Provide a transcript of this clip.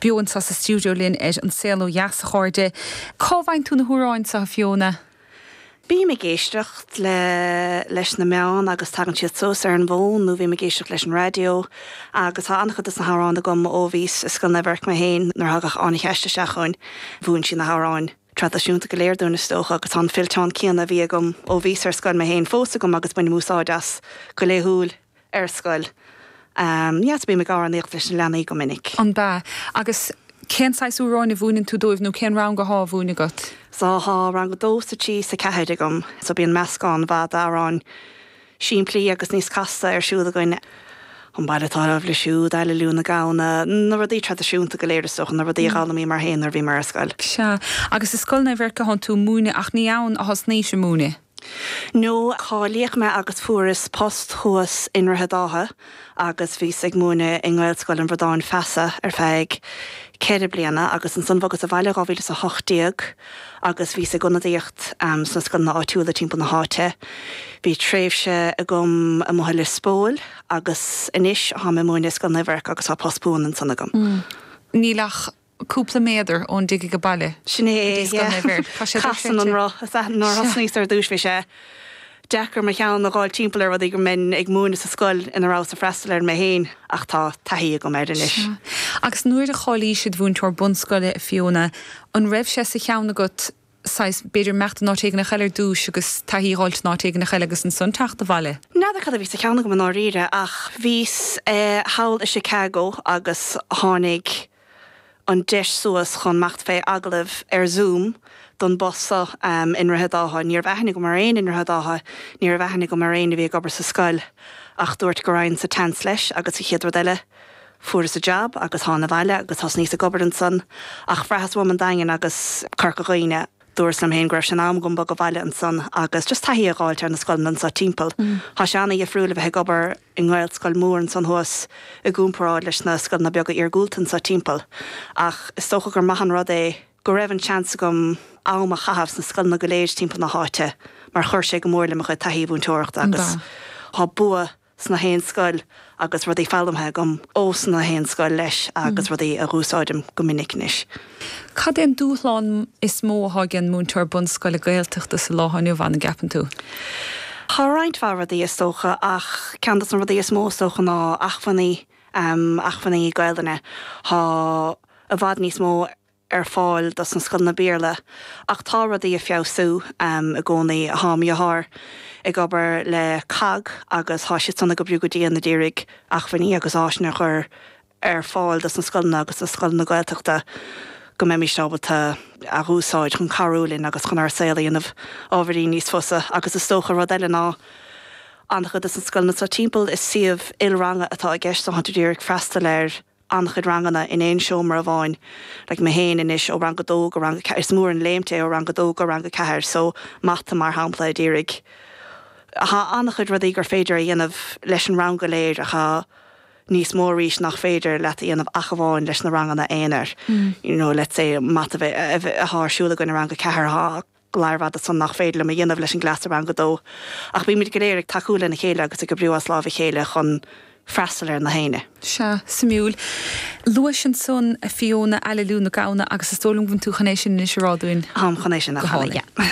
beo anseo sa stiúideo linn ar An Saol Ó Dheas, a chairde. Cá bhfaigheann tú na hamhráin seo, a Fiona? Bím ag éisteacht le, leis na meáin agus tagann siad suas ar an bhfón nó bím ag éisteacht leis an raidió agus tá an-chuid de na hamhráin agam ó bhíos i Scoil Naomh Eirc mé féin nuair a thagadh Áine Cheaist isteach chugainn. Mhúin siad na hamhráin traidisiúnta go léir dúinn is dócha agus tá an fillteán céanna a bhí agam ó bhíos ar scoil mé féin fós agam agus bainim úsáid as go laethúil. ar scoil. Yes, bím ag amhránaíocht leis na leanaí go minic. An ea. Agus cén saghas amhráin a mhúineann tú dóibh nó cén rang athá a mhúineadh agat? So tá rang a dó 's a trí 's a ceathair agam so bíonn meascán mhaith d'amhráin simplí agus níos casta ar siúl againn. An Maidrín Rua, abair leo siúd, Aililiú na Gamhna, na rudaí traidisiúnta go léir is dócha, na rudaí a dh'fhoghlaimíomar féin nuair a bhíomar ar scoil. Sea. Agus i Scoil Naomh Eirc athá tú ag múineadh ach ní ann a thosnaís ag múineadh? Nó cáilíodh mé agus fuaireas post thuas i nDroichead Átha agus bhíos ag múineadh i nGaelscoil an Bhradáin Feasa ar feadh ceithre bliana agus ansan bhogas abhaile dhá mhíle 's a hocht déag agus bhíos ag ionadaíocht sna scoileanna áitiúla timpeall na háite. Bhí tréimhse agam amuigh i Lios Póil agus anois táim ag múineadh i Scoil Naomh Eirc agus tá post buan ansan agam. Níl ach cúpla méadar ón dtig ag baile. Sin é é, yeah. Casann an roth, is ea. Nuair a thosnaíos ar dtúis bhí sé deacair mo cheann a dh'fháil timpeall ar rudaí go mbeinn ag múineadh sa scoil ina rabhas ag freastal air mé féin ach tá taithí agam air anois. Agus nuair a cháilís id mhúinteoir bunscoile, a Fiona, an raibh sé sa cheann agat saghas, b'fhéidir imeacht in áit éigin eile ar dtúis agus taithí a dh'fháilt in áit éigin eile agus ansan teacht abhaile. N'fheadar cad a bhí sa cheann agam i ndáiríre ach bhíos thall i Chicago agus tháinig an deis suas chun imeacht fé agallamh ar Zoom don bpost so i nDroichead Átha. Ní raibh aithne agam ar éinne i nDroichead Átha, ní raibh aithne agam ar éinne a bhí ag obair sa scoil ach dúrt go raghainn sa tseans leis agus an chéad rud eile, Fuaireas an jab agus thána abhaile agus thosnaíos ag obair ansan ach bhraitheas uaim an Daingean agus Corca Dhuibhne. Dúrt liom féin go raibh sé in am dom bogadh abhaile ansan agus just taithí a dh'fháilt ar na scoileanna anso timpeall. Thá sé ana-dhifriúil a bheith ag obair i nGaelscoil mhór ansan thuas i gcúmparáid leis na scoileanna beaga iargúlta anso timpeall ach is dócha gur maith an rud é go raibh an seans agam am a chaitheamh sna scoileanna go léir timpeall na háite mar chuir sé go mór le mo chuid taithí múinteoireachta agus thá bua sna haon scoil agus rudaí foghlamtha agam ó sna haon scoil leis agus rudaí a dh'úsáidim go minic anois. Cad é an dúshlán is mó atá ag an múinteoir bunscoile Gaeltachta sa lá atá inniu ann, a gceapann tú? Tá roinnt mhaith rudaí is dócha ach ceann dos na rudaí is mó is dócha ná achmhainní, achmhainní Gaelainne. Tá i bhfad níos mó ar fáil dos na scoileanna Béarla ach tá rudaí ag feabhsú i gcónaí. Thá mo dheartháir ag obair le COGG agus thá siad san ag oibriú go dian a d'iarraidh achmhainní agus áiseanna a chur ar fáil dos na scoileanna agus dos scoileanna Gaeltachta go mbeimíst ábalta a dh'úsáid chun cabhrú linn agus chun ár saol a dhéanamh ábhairín níos fusa agus is dócha rud eile ná an-chuid dos na scoileanna so timpeall is suíomh il-ranga atá i gceist so thá siad a d'iarraidh freastal ar an-chuid ranganna in aon seomra amháin like mé féin anois ó rang a dó go rang a ceathair is mór an léimt é ó rang a dó go rang a ceathair so mata mar shampla a d'iarraidh thá an-chuid rudaí gur féidir a dhéanamh leis an rang go léir ach thá níos mó arís nach féidir leat a dhéanamh ach amháin leis na ranganna aonair you know let's say mata a bheith a bheith thá ar siúl againn i rang a ceathair thá Go maire fada san nach féidir liom a dhéanamh leis an gcleas i rang a dó, ach bímid go léir ag tacú lena chéile agus ag oibriú as lámh a chéile chun freastal ar nach aoinne. Sea, suimiúil. Luais ansan a Fiona, Aililiú na Gamhna, agus is dóigh liom go bhfuil tú chun é sin anois a rá dúinn. Táim chun é sin a chanadh, yeah.